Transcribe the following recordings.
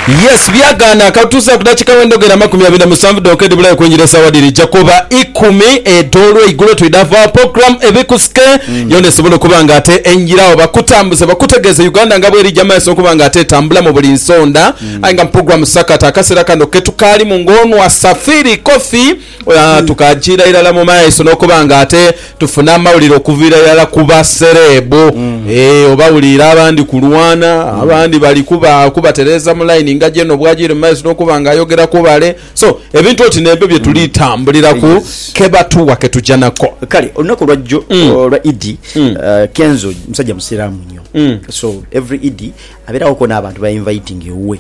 Yes byagaana katutuuseeku dakika wenda ogenda amakumi abiri na musanvu dhonka edhibulayo okwingira esaawa dhirija kuba ikumi edh'olweigulo twidha vaa program ebikusike yona esobole okuba nga ate enjiragho bakutambuze bakutegeeze Uganda nga bwerija mumaiso okuba nga ate etambula mu buli nsonda aye nga mu program sakata akaseera kano ketukaalimu nga ono asafiri Coffee Tukajiira irala mu maiso n'okuba nga ate tufuna amawulire okuviira irala ku basereebu. Obawuliire abandi kulwana, abandi bali kubatereeza mu line nga gy'eno bw'ajiire mu maiso n'okuba nga ayogera ku bale. So, ebintu oti n'ebyo bye tuli tambuliraku, ke batuwa ke tuja nako. Kale olunaku olwa jjo olwa Idi, Kenzo musajja Musiraamu nnyo. So every Idi. Abeerawoku n'abantu b'ainvaitinga ewuwe,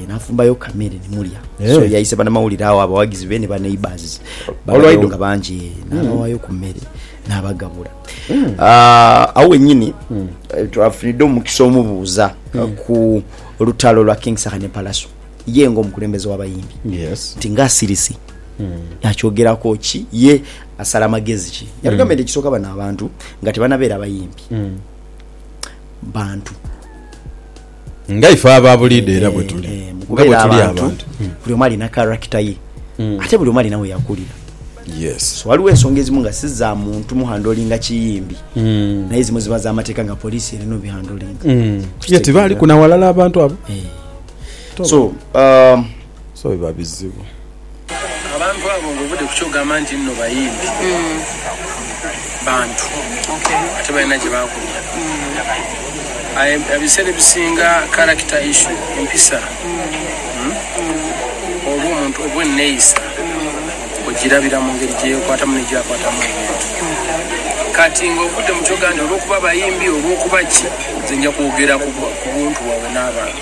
n'afumbayo ku kamere ni mulya. So yaise banamawulire agho, abawagizi be ni baneighbours balabewo nga bangi, n'abawaayo ku mere n'abagabula. Agho wennyini twafunidde omukisa omubuuza ku lutalo lwa King Saha ne Pallaso, ye nga omukulembeze w'abayimbi nti ng'asirise akyogeraku ki, ye asala magezi ki? Yatugambye nti ekisooka bano abantu nga tibanabeera bayimbi. bantu. Nga ife aba buliidho era bwe tuli. Eh, mu Nga bwe kubeera tuli abantu, abantu. Mm. buli omu alina karakita ye. Ate buli omu alina we yakulira. Yes. So waliwo ensonga ezimu nga si za muntu muhandolinga kiyimbi, naye ezimu ziba za mateeka nga poliisi erina obihandolinga. Ye Okitegeera. tibaaliku na walala abantu abo? Eh. Toba. So, um, So biba bizibu. Abantu abo nga ovudde ku ky'ogamba nti nno bayimbi, bantu ate balina gye baakulira. Aye ebiseera ebisinga character issue, empisa, oba omuntu oba enneeyisa ogirabira mu ngeri gye yeekwatamu ne gy'akwatamu ebintu. Kati nga ovudde mu ky'oga nti olw'okuba bayimbi, olw'okuba ki, nze nja kwogera ku buntu bwaabwe n'abantu.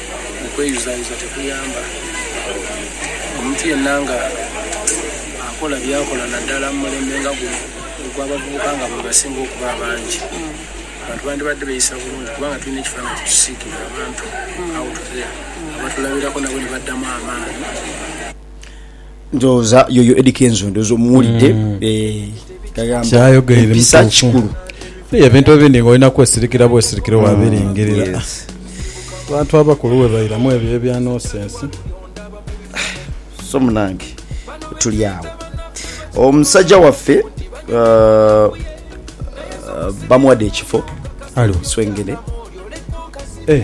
Okweyuzayuza tekuyamba. Omuntu yenna nga akola byakola naddala mu mulembe nga guno ogw'abavubuka nga bwebasinga okuba abangi, abantu bandibadde beeyisa bulungi kubanga tulina ekifaananyi kyetusiigira abantu out there abatulabirako nabo nibaddamu amaani. Ndowooza yoyo Eddy Kenzo ndowooza omuwulidde yagamba empisa kikulu. Ebintu ebindi nga olina kwesirikira bwesirikire wabiringirira. Abantu abakulu webairamu ebyo ebya nosense. So munange tuli awo omusajja waffe uh, uh, bamuwadde ekifo Ali wa? swengene Eh,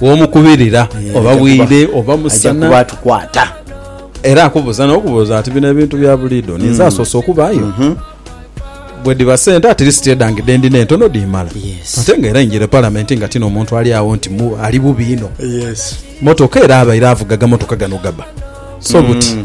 Bw'omukubirira oba bwire oba musana era akubuuza n'okubuuza ati bino ebintu bya buliido ninze asoose okubaayo? Bwedhiba sente at least edhange dhe ndina entono dhiimala ate nga era injire Palamenti nga tino muntu ali agho nti ali bubi inho. Mmotoka era abaire avuga agamotoka gano gaba so buti.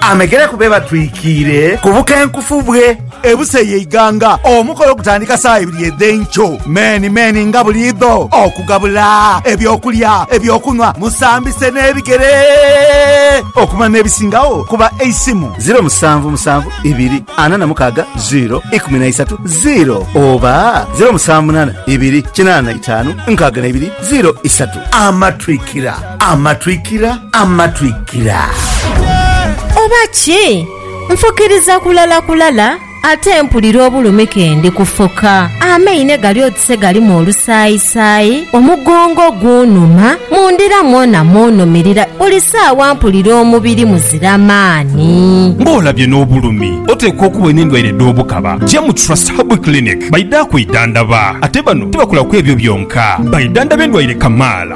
Amegere ku be batwikiire ku bukenkufu bwe. Ebusa ye Iganga. Omukolo gutandika saawa ibiri edh'enkyo meni meni nga buliidho okugabula eby'okulya, eby'okunhwa, musambise n'ebigere okumanya n'ebisingagho ku ba Eisimu, ziro musanvu musanvu ibiri ana na mukaaga ziro ikumi na isatu ziro oba ziro musanvu munaana ibiri kinaana na itaanu nkaaga na ibiri ziro isatu. Amatwikira. Amatwikira, amatwikira. Oba ki? Nfukiriza kulala kulala ate mpulira obulumi kendi kufuka. Amaine gali oti se galimu olusaayisaayi, omugongo gunuma, mu ndira mwona munumirira, buli saawa mpulira omubiri muzira maani. Ng'olabye n'obulumi, oteekwa okuba n'endwaire dh'obukaba. Ja mu Trust Herbal Clinic baidha kwidhandaba. Ate bano tibakolaku ebyo byonka, baidhandhaba endwaire kamaala.